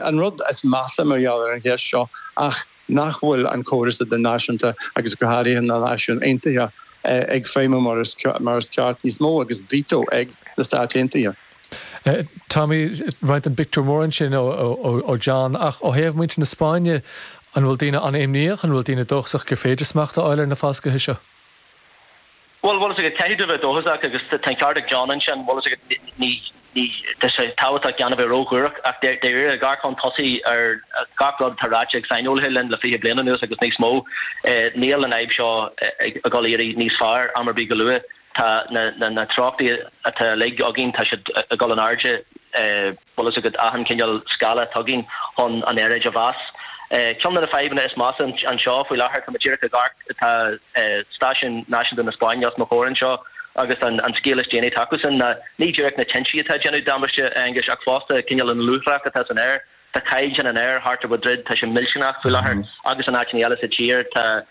An rud is measa mar gheall ar an gceist seo ná nach bhfuil an córas idirnáisiúnta agus go háirithe na Náisiúin Aontaithe ag feidhmiú mar is ceart níos mó agus veto ag na Stáit Aontaithe. Tommy, ag roinnt an phictiúir mhóir ansin ó John ach ó thaobh muintir na Spáinne, an bhfuil daoine an-imníoch, an bhfuil daoine dóchasach gur féidir smacht a fháil ar na falscaithe seo? Bhuel, bhfuil fhios agat, caithfidh tú a bheith dóchasach agus tá an ceart ag John ansin, bhfuil fhios agat, ní, ní, tá sé tábhachtach gan a bheith ró-shuarach ach dáiríre, ag amharc chun tosaigh ar gach rud atá ráite ag saineolaithe linn le fiche bliain anuas agus níos mó, níl an fhadhb seo ag dul a dh'éirí níos fearr am ar bith go luath, tá na, na, na treochtaí atá uilig againn, tá siad ag dul in airde. bhfuil fhios agat, achan chineál scála atá againn chun an aeráid a mheas. Ceann de na fadhbanna is measa anseo faoi láthair, tá muid díreach ag amharc, tá stáisiún náisiúnta na Spáinne os mo chomhair anseo agus an scéal is déanaí atá acusan ná, ní díreach na tintí atá ag déanamh damáiste, a Aonghuis, ach fosta cineál an luaith atá san aer. Tá caighdeán an aer thart ar Mhadrid, tá sé millteanach faoi láthair agus in áiteanna eile sa tír, tá.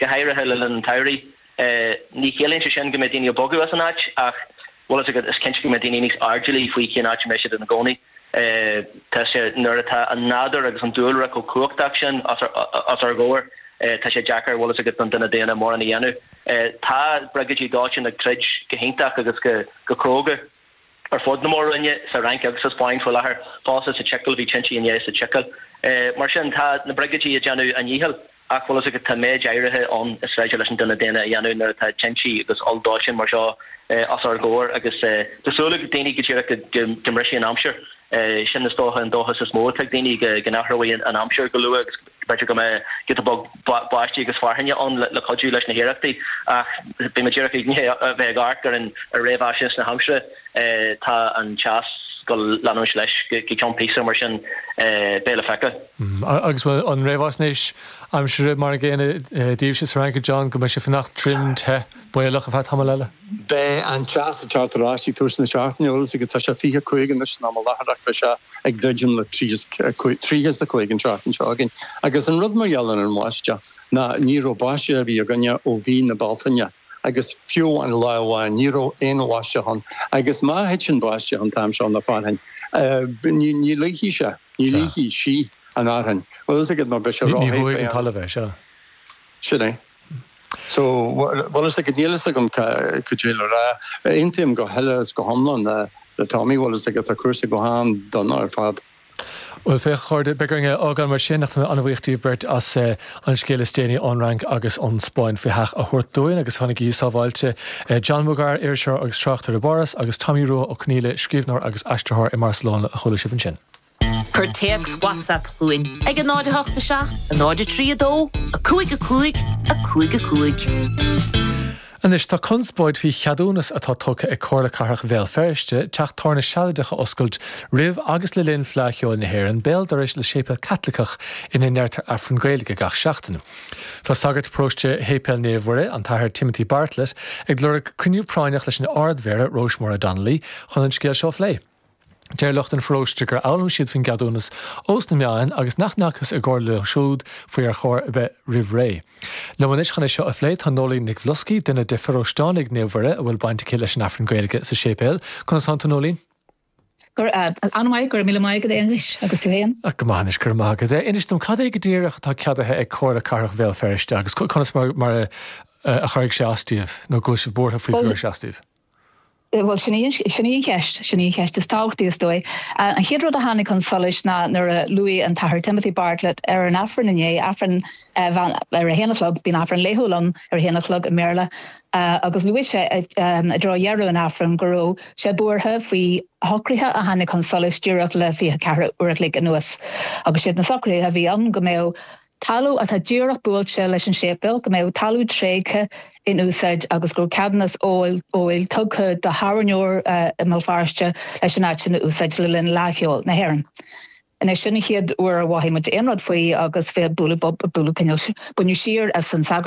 go háirithe le linn an tsamhraidh. Ní chiallaíonn sé sin go mbeidh daoine ag bogadh as an áit ach bhfuil fhios agat, is cinnte go mbeidh daoine níos airdeallaí faoi cén áit a mbeidh siad ina gcónaí. Tá sé, nuair atá an nádúr agus an dúlra chomh cumhachtach sin os ár gcomhair, tá sé deacair, bhfuil fhios agat, don duine daonna mórán a dhéanamh. Tá briogáidí dóiteáin ag troid go hiontach agus go cróga. ar fud na mór-roinne, sa Fhrainc agus sa Spáinn faoi láthair, fosta sa tSicil, bhí tintí inné sa tSicil. Mar sin, tá na briogáidí ag déanamh a ndíchill, ach bhfuil fhios agat, tá méid áirithe ann is féidir leis an duine daonna a dhéanamh nuair atá tintí agus olldóiteáin mar seo os ár gcomhair, agus tá súil ag daoine díreach go mbrisfidh an aimsir. Sin, is dócha, an dóchas is mó atá ag daoine, go n-athróidh an aimsir go luath agus, B'fhéidir go mbeadh giota beag báistí agus fearthainne ann le cuidiú leis na hiarrachtaí, ach bhí muid díreach i ndiaidh a bheith ag amharc ar réamhaisnéis na haimsire, tá an teas go leanúint leis go ceann píosa, mar sin beidh le feiceáil. Agus an réamhaisnéis aimsire mar an gcéanna daoibhse sa Fhrainc, a John, go mbeidh sé fanacht tirim te? is baolach ar feadh tamaill eile. Beidh an teas ag teacht ar ais ag tús na seachtaine, bhfuil fhios agat, tá sé fiche cúig anois in am i láthair, beidh sé ag druidim le tríocha is a cúig an tseachtain seo againn. Agus an rud mar gheall ar an mbáisteach, ná ní raibh báisteach ar bith againne ó mhí na Bealtaine, agus fiú amháin lá amháin, ní raibh aon bháisteach ann, agus má thiteann báisteach an t-am seo nó fearthainn, ní luífidh sé, ní luífidh sí an fhearthainn, bhfuil fhios agat, mar beidh sé ró-the, beidh an. Ní bhuafaidh an talamh é, sea. Sin é. Bhfuil fhios agat, níl a fhios agam cad é le rá. Aontaím go huile is go hiomlán le Tommy, bhfuil fhios agat, tá cúrsaí go han-dona ar fad. Bhuel, féach a chairde, beidh orainn é a fhágáil mar sin, ach tá mé an-bhuíoch díbh beirt as an scéal is déanaí ón Fhrainc agus ón Spáinn faoi seach a thabhairt dúinn agus fanaigí sábháilte. John Mugar, iriseoir agus tráchtaire i bPáras, agus Tommy Rua Ó Conaíle, scríbhneoir agus aistritheoir i mBarcelona, a chuala sibh ansin. Cuir téacs WhatsApp chugainn ag 08 7 0 3 2 5 5 5 5. Anois tá conspóid faoi cheadúnas atá tugtha ag Comhairle Cathrach Bhéal Feirste teach tábhairne sealadach a oscailt roimh agus le linn Fleadh Cheoil na hÉireann béal dorais le séipéal Caitliceach ina ndeirtear Aifreann Gaeilge gach seachtain. Tá sagart paróiste Shéipéal Naomh Mhuire, an tAthair Timothy Bartlett, ag lorg cruinniú práinneach leis an Ard-Mhéara, Róis-Máire Donnelly, chun an scéal seo a phlé. Deir lucht an pharóiste gur fhoghlaim siad faoin gceadúnas ós na meáin agus nach ndeachthas i gcomhairle leo siúd faoi ar chor ar bith roimh ré. Liom anois chun é seo a phlé tá Noeleen Nic Bhloscaidh, duine de pharóisteánaigh Naomh Mhuire a bhfuil baint aici leis an Aifreann Gaeilge sa séipéal. Conas atá tú Noeleen? An-mhaith, go raibh míle maith agat a Aonghuis, agus tú fhéin. Go maith anois, go raibh maith agat. Inis dom, cad é go díreach atá ceadaithe ag Comhairle Cathrach Bhéal Feirste agus conas mar a chuirfidh sé as daoibh nó go bhfuil sibh buartha faoi go gcuirfidh sé as daoibh? Bhuel, sin í an, sin í an cheist, sin í an cheist is tábhachtaí, is dóigh. An chéad rud a tháinig chun solais ná nuair a luaigh an tAthair Timothy Bartlett ar an Aifreann inné, Aifreann mheán, ar a haon a chlog, bíonn Aifreann laethúil ann ar a haon a chlog i mBéarla, agus luaigh sé i dtreo dheireadh an Aifrinn go raibh sé buartha faoi shocruithe a tháinig chun solais díreach le fiche ceathair uair a chloig anuas, agus siad na socruithe a bhí ann go mbeadh talamh atá díreach buailte leis an séipéal, go mbeadh talamh tréigthe in úsáid agus go raibh ceadúnas óil tugtha do thábhairneoir i mBéal Feirste leis an áit sin a úsáid le linn Fhleadh Cheoil na hÉireann. Anois, sin an chéad uair a mhothaigh muid aon rud faoi agus b'fhéidir bualadh bob, bualadh coinneal, baineadh siar as an sagart,